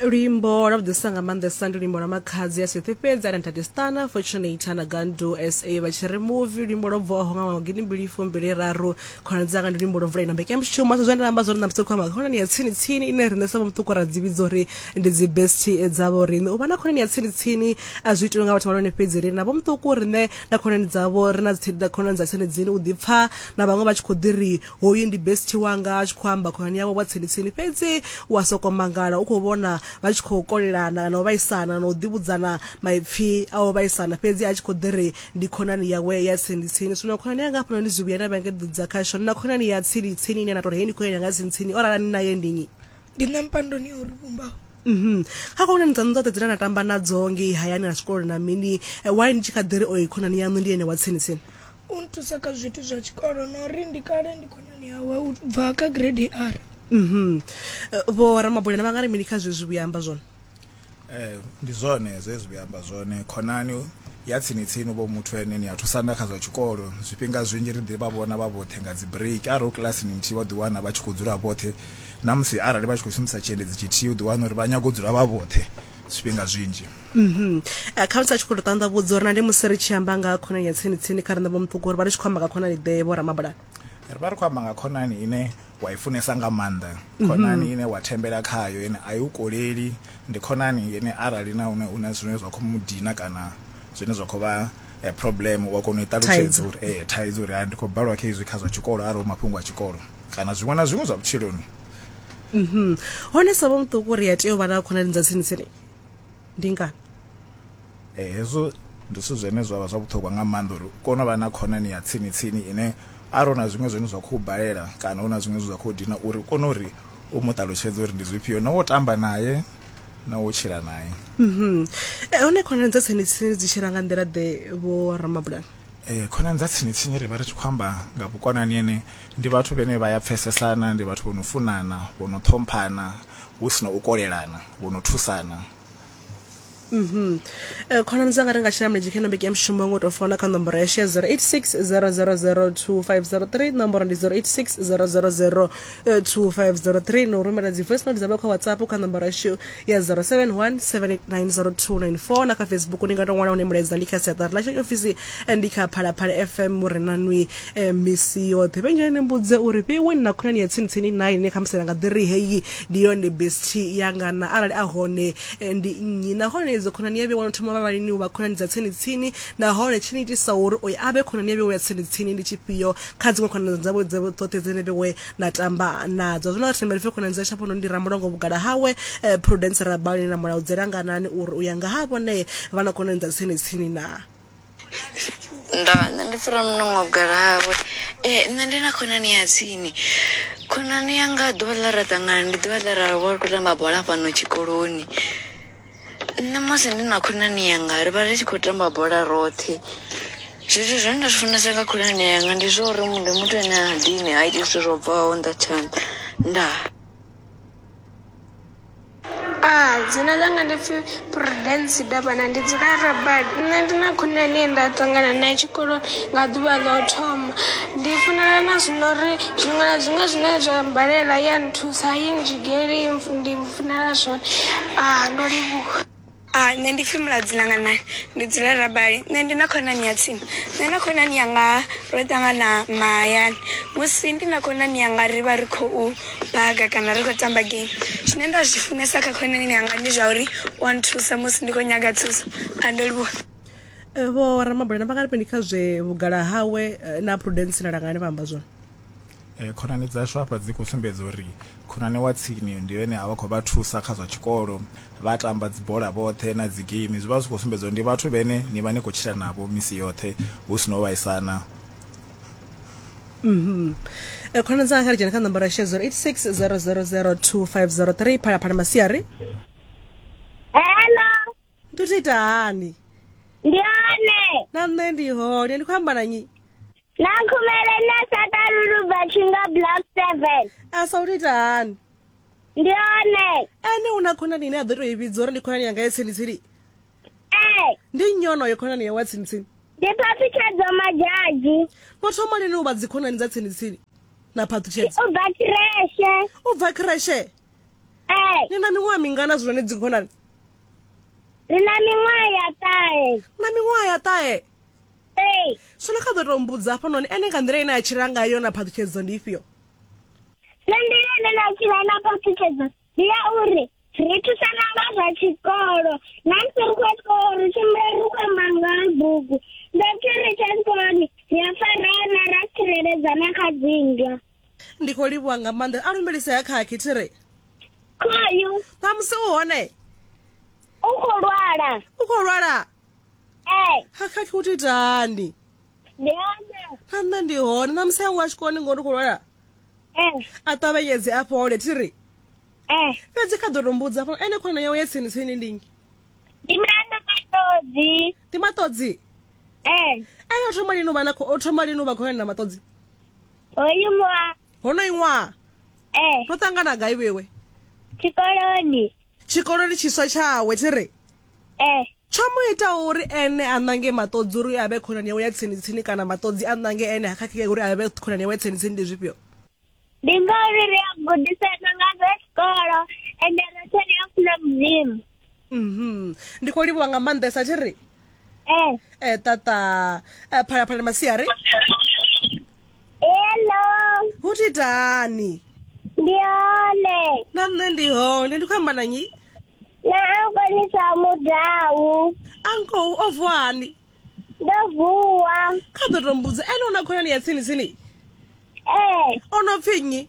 luimbo lwa vhuḓisa nga maanḓesa ndi luimbo lwa makhadzi ya sithi fhedzi ana ntate stana fortunate ana gandu sa vha tshi ri muvi luimbo lwo bvaho nga ṅwaha gidi mbili fumbili raru khonani dzanga ndi luimbo lwo mvula ina mbekanyamushumo sa zwe nda amba zwone na musi khou amba khonani ya tsini tsini ine riṋe sa vhamuṱuku ra dzi vhidza uri ndi dzi best dzavho riṋe u vha na khonani ya tsini tsini a zwi itiwe nga vhathu vhalone fhedzi ri na vhamuṱuku riṋe na khonani dzavho ri na khonani dza tsini dzini u ḓipfa na vhaṅwe vha tshi khou ḓi ri Hoyu ndi bestie wanga, a tshi khou amba khonani yawe wa tsini-tsini. Fhedzi u a sokou mangala u khou vhona vha tshi khou kolelana kana u vhaisana na u ḓivhudzana maipfi a u vhaisana fhedzi a tshi khou ḓi ri ndi khonani yawe ya tsini-tsini. Zwino khonani yanga hafhanoni ndi zwivhuya na vhengedza khasho. Ndi na khonani ya tsini-tsini ine na tou ri hei ndi khonani yanga ya tsini-tsini. O rala ni naye ndi nnyi? Ndi na mpandoni ya u ri vhumbaho. Mhm. Kha khonani dzaṋu dzoṱhe dzine na tamba nadzo ngei hayani na tshikoloni na mini, why ni tshi kha ḓi ri oyu khonani yaṋu ndi ene wa tsini-tsini? U nthusa kha zwithu zwa tshikolo na uri ndi kale ndi khonani yawe u bva kha grade R. Mhm. Eh, Vho Ramabulana vha nga ri mini kha zwezwi vhuya amba zwone? Eh, ndi zwone zwezwi vhuya amba zwone khonani ya tsini tsini vho muthu ene ni a thusana kha zwa tshikolo zwifhinga zwinzhi ri ḓi vha vhona vha vhoṱhe nga dzi break arali u kilasini nthihi vha ḓi wana vha tshi khou dzula vhoṱhe na musi arali vha tshi khou shumisa tshiendedzi tshithihi u ḓi wana uri vha nyaga u dzula vha vhoṱhe zwifhinga zwinzhi mhm eh, kha tsa tshikolo tanda vhudza uri na ndi musi ri tshi amba nga khonani ya tsini tsini kha renda vhomuṱuku uri vha ri tshi khou amba nga khonani ḓe vho ramabulana ri vha ri khou amba nga khonani ine wa i funesa nga maanḓa mhm. khonani ine wa thembela khayo ine a i u koleli ndi khonani ine arali na une une zwine zwa khou mu dina kana zwine zwa khou vha eh, problem wa kona u i ṱalutshedza uri ee eh, thaidzo uri ndi khou balwa kha izwi kha zwa tshikolo arali mafhungo a tshikolo kana zwiṅwe na zwiṅwe zwa vhutshiloni mhm hone sa vho muṱuku uri ya tea u vha na khonani dza tsini tsini ndi ngani eh hezwo ndi zwithu zwine zwa vha zwa vhuṱhogwa nga maanḓa uri u kone u vha na khonani ya tsini tsini ine arali hu na zwiṅwe zwine zwa khou balela kana hu na zwiṅwe zwe zwa khou dina uri u kone uri u mu ṱalutshedze uri ndi zwifhio na wo tamba naye na wo tshila naye mhm eh hone khonani dza tsini tsini dzi tshila nga nḓila ḓe vho ramabulana Ee, khonani dza tsini tsini ri vha ri tshi khou amba nga vhukonani ene ndi vhathu vhene vha ya pfesesana ndi vhathu vho no funana vho no ṱhomphana hu si na u kolelana vho no thusana mhm. eh, khonani dzanga ri nga tshina mulenzhe kha nombeki ya mushumo ngo tou fona kha nomboro ya share 086 000 2503 nomboro ndi 086 000 2503 no rumela dzi voice note dza vha kha whatsapp kha nomboro yashu ya 0717890294 na kha facebook ni nga to ṅwala hune mulaedza ndi kha siaṱari lashu ya ofisi eh, ndi kha phalaphala fm mure na nwi eh, misi yoṱhe vhenjani ni mbudze uri vhewe ni na khonani ya tsinitsini nayi ine khamusi na nga ḓi ri heyi ndi yone besti yanga na arali a hone eh, ndi nnyi nahone idzo khonani ya vhewe no thoma vhavalini u vha khonani dza tsinitsini nahone tshi ni itisa uri oyo a vhe khonani ya vhewe ya tsinitsini ndi tshifhio kha dziṅwe khonani dzavho dzoṱhe dzine vhewe na tamba nadzo zwino ri thembele fhe khonani dza shaphono ndi ramulongo vhugala hawe eh, prudence rabali na mulayo dzelanganani uri u ya nga ha vhone vha na khonani dza tsini tsini na ndo nṋe ndi fura munongo gala hawe ee nṋe ndi na khonani ya tsini khonani yanga ḓuvha ḽa ra ṱangana ndi ḓuvha ḽa ra vha ri khou tamba bola fhano tshikoloni Nṋe musi ndi na khonani yanga ri vha ri tshi khou tamba bola roṱhe zwithu zwine nda zwi funesa nga khonani yanga ndi zwa uri ndi muthu ane ha dini ha iti zwithu zwo bvaho nnḓa ha tshanḓa ndaa. Dzina ḽanga ndi pfhi Prudence Davhana ndi dzula Rabad nṋe ndi na khonani ye nda ṱangana nae tshikoloni nga ḓuvha ḽa u thoma. Ndi funana nazwo na uri zwiṅwe na zwiṅwe zwine zwa mmbalela i ya nthusa a i ndzhigeli ndi. Funela zwone ah ndo livhuwa. Hai nṋe ndi pfi Muladzi Langanayi ndi dzula Rabali nṋe ndi na khonani ya tsini nṋe na khonani yanga ro ṱangana mahayani musi ndi na khonani yanga ri vha ri khou baga kana ri khou tamba game zwine nda zwi funesa kha khonani yanga ndi zwa uri wa nthusa musi ndi khou nyaga thuso a ndo livhuwa eh, vho ramabulana vha nga ri mini kha zwe vhugala hawe eh, na prudence na langani vha amba zwone Khonani dzashu hafha dzi khou sumbedza uri khonani wa tsini ndi ene a vha khou vha thusa kha zwa tshikolo, vha tamba dzibola vhoṱhe na dzi geimi. Zwi vha zwi khou sumbedza uri ndi vhathu vhene ni vha ni khou tshila navho misi yoṱhe hu si na u vhaisana. Khonani dzanga kha ri dzhene kha nomboro ya shedzo 86000250 phalaphala masiari. Hello. ndi tou ita hani ndi hone na nṋe ndi hone ndi khou amba na nyi na khumele na sakalulu bva tshinga block seven a sa u tou ita hani ndi hone ene u na khonani ine a ḓo tou i vhidza uri ndi khonani yanga ya tsini-tsini ee ndi nnyi onoyo khonani yawe ya tsini-tsini ndi phaṱhutshedzo madzhadzhi no thoma lini u vha dzikhonani dza tsini-tsini na phaṱhutshedzo u bva kireshe u bva kreshe Ee, Ni na miṅwaha mingana zwino ni dzikhonani? ndi na miṅwaha ya ṱahe. Na miṅwaha ya ṱahe. Ee, Zwino kha ḓo tou mbudza hafha noni ene nga nḓila ine a tshila ngayo na phaṱhutshedzo ndi ifhio? nṋe nḓila ine nda tshila na phaṱhutshedzo ndi ya uri ri thusana nga zwa tshikolo. Na musi ri khou ya tshikolo ri tshimbila ri khou amba nga ha bugu. Nda tshi ri tsha tshikoloni ri a farana ra tsireledzana kha dzinndwa. Ndi khou livhuwa nga maanḓa. A lumelise ha khakhi thi ri. Kwayu. Ṋamusi u hone. U khou lwala. U khou lwala. Ee. Ha khakhi u titani. Ndi hone. Na nṋe ndi hone. Ṋamusi a ngo a tshikoloni ngori u khou lwala. Ee. A ṱavhanyedze a fhole thi ri. Ee. Fhedzi kha ḓo to mbudza afho ene khona yawe ya tsini tsini ndi nnyi? Ndi Miranda Maṱodzi. Ndi Maṱodzi. Ee. Ene o thoma lini u vha na o thoma lini u vha khonani na Maṱodzi? hoyu ṅwaha honoyi ṅwaha ee ro ṱangana gai vhewe tshikoloni tshikoloni tshiswa tshawe tshi ri ee tsho mu itaho uri ene a ṋange maṱodzi uri a vhe khonani yawe ya tsini tsini kana maṱodzi a ṋange ene ha khakhea uri a vhe khonani yawe ya tsini tsini ndi zwifhio ndi ngauri ri a gudisana nga zwa tshikolo ende roṱhe ri a funa mudzimu Mhm. ndi khou livhuwa nga maanḓesa thi ri Eh, eh tata eh, phalaphala masiari hello. hu thi itani Ndi hone. na nṋe ndi hone ndi khou amba na nyi Na ankonisa mudau. ankou o vuani Ndo vuwa. kha ḓo to mbudza ene u na khonani ya tsini tsini Eh, o no pfi nnyi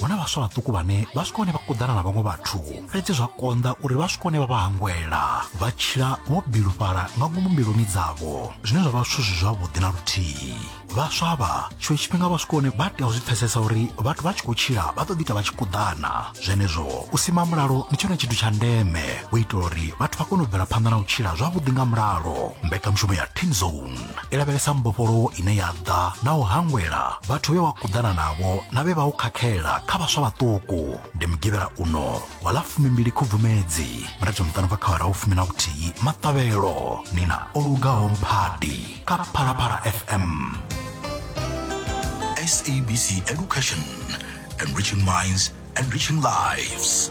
huna vhaswa vhaṱuku vhane vha swika hone vha kuḓana na vhaṅwe vhathu fhedzi zwa konḓa uri vha swika hone vha vha hangwela vha tshila vho bilufhala nga ngomu mbiluni dzavho zwine zwa vha zwithu zwi zwavhuḓi na luthihi vhaswa vha tshiṅwe tshifhinga vha swika hone vha tea u zwi pfesesa uri vhathu vha tshi khou tshila vha ḓo ḓita vha tshi kuḓana zwenezwo u sima mulalo ndi tshone tshithu tsha ndeme u itela uri vhathu vha kone u bvela phanḓa na u tshila zwavhuḓi nga mulalo mbekanyamushumo ya team zone i lavhelesa mbofholowo ine ya ḓa na u hangwela vhathu vhe wa kuḓana navho na vhe vha u khakhela kha vhaswa vhaṱuku ndi mugivhela uno wa ḽa fumimbili khubvumedzi mirathi miṱanu bva kha vharahu fumi na vhuthihi maṱavhelo ni na o lugaho mphadi kha phalaphala fm SABC Education, enriching minds, enriching lives.